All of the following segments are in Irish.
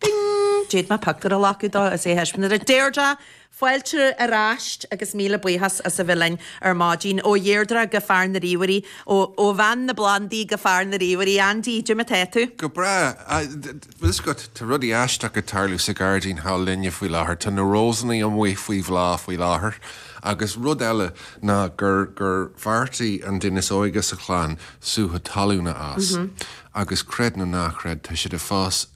Bing! D'fhéad mé pioctúr a ghlacadh dó is é a thaispeáint do Dheirdre! Fáilte ar ais agus míle buíochas as a bheith linn ar maidin. Ó Dheirdre go fear na ríomhairí, ó bhean na bplandaí go fear na ríomhairí, Andy, goidé mar tá tú. Go breá. Bhfuil 'fhios agat, tá rudaí aisteach ag tarlú sa ghairdín s'againne faoi láthair. Tá na rósannaí amuigh faoi bhláth faoi láthair agus rud eile ná gur gur bheartaigh an duine is óige sa chlann sútha talún a fhás agus creid nó ná creid tá siad ag fás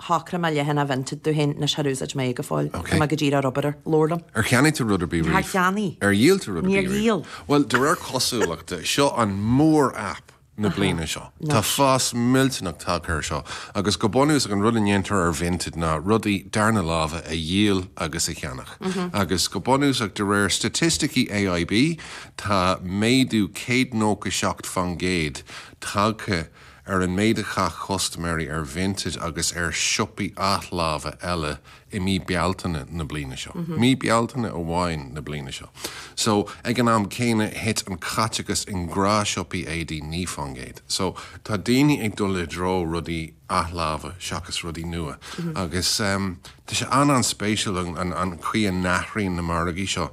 shocraigh mé leagan a bhaint dom féin, anois char úsáid mé é go fóill. Tá mé go díreach ar obair ar, lár liom. Ar cheannaigh tú rud ar bith Níor riamh? cheannaigh. Ar dhíol tú rud ar Níor bith riamh? dhíol. Bhuel, de réir cosúlachta, seo an mhór-aip na bliana seo. Tá fás millteanach tagtha ar seo, agus go bunúsach an rud a dhéantar ar Vinted ná rudaí darna láimhe a dhíol agus a cheannach, agus go bunúsach de réir staitisticí AIB tá méadú céad nócha seacht fán gcéad tagtha ar an méid a chaith custaiméirí ar Vinted agus ar siopaí athláimhe eile i mí Bealtaine na bliana seo. I mí Bealtaine amháin na bliana seo so, ag an am céanna, thit an caiteachas i ngnáthshiopaí éadaí 9 fán gcéad. So, tá daoine ag dul i dtreo rudaí athláimhe seachas rudaí nua agus tá sé an-an-spéisiúil an an chaoi a n-athraíonn na margaí seo.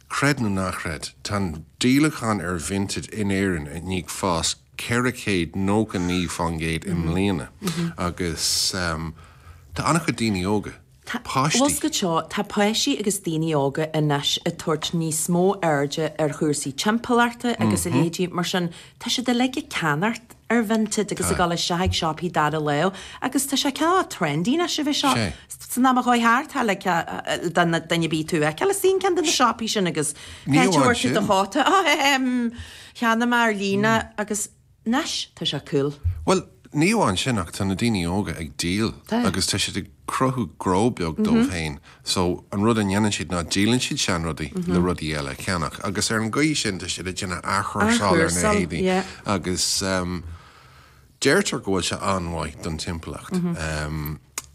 Creid nó ná creid, tá an díolachán ar Vinted in Éirinn i ndiaidh fás 499% i mbliana agus tá an-chuid daoine óga, páistí. Tá páistí agus daoine óga anois ag tabhairt níos mó airde ar chúrsaí timpeallachta agus a leithéidí, mar sin tá siad uilig ag ceannach ar Vinted agus ag dul isteach ag siopaí dara láimhe agus tá sé cineál trendy anois a bheith seo. San am a chuaigh thart, tá like duine bídh tú a fheiceáil ag suí in ceann de na siopaí sin agus pé a dtabharfaidh tú do chóta. cheana m'fhear líne agus anois tá sé cúl. Bhuel, ní amháin sin ach tá na daoine óga ag díol agus tá siad ag cruthú gnó beag dóibh féin so an rud a dhéanann siad ná díolann siad seanrudaí le rudaí eile a cheannach agus ar an gcaoi sin tá siad ag déanamh athchúrsáil ar na héadaí agus Deirtear go bhfuil sé an-mhaith don timpeallacht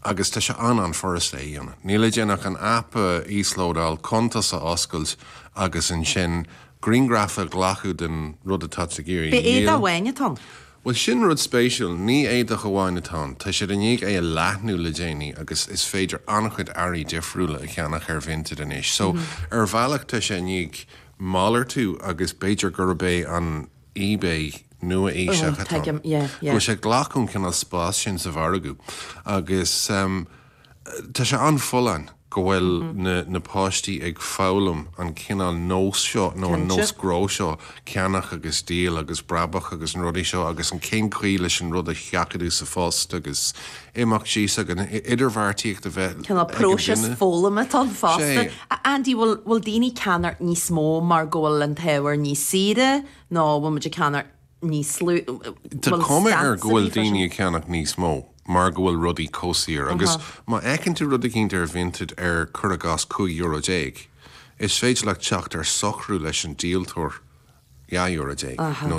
agus tá sé an-an-fhurast é a dhéanamh. Níl le déanamh ach an aip a íoslódáil, cuntas a oscailt agus ansin griangraf a ghlacadh den rud atá tú ag iarraidh a dhíol. Ab é éadach amháin atá ann? Bhuel, sin rud spéisiúil. Ní éadach amháin atá ann. Tá siad i ndiaidh é a leathnú le déanaí agus is féidir an-chuid earraí difriúla a cheannach ar Vinted anois. So, ar bhealach tá sé i ndiaidh malartú agus b'fhéidir gurb é an. eBay nua-aoiseach atá ann, go bhfuil sé ag glacadh an cineál spás sin sa mhargadh agus tá sé an-fholláin go bhfuil na páistí ag foghlaim an cineál nós seo nó an nós gnó seo, ceannach agus díol agus brabach agus na rudaí seo agus an cén chaoi leis an rud a sheachadadh sa phost agus. imeacht síos san idirbheartaíocht a bheith cineál próiseas foghlama ann fosta. Andy, bhfuil, bhfuil daoine ag ceannach níos mó mar go bhfuil an t-ábhar níos saoire nó bhfuil muid ag ceannach níos lú, Tá cuma air go bhfuil daoine ag ceannach níos mó mar go bhfuil rudaí chomh saor agus má fheiceann tú rud eicínt ar Vinted ar, cuir i gcás, cúig euro déag, is féidir leat teacht ar shocrú leis an díoltóir dhá euro déag nó.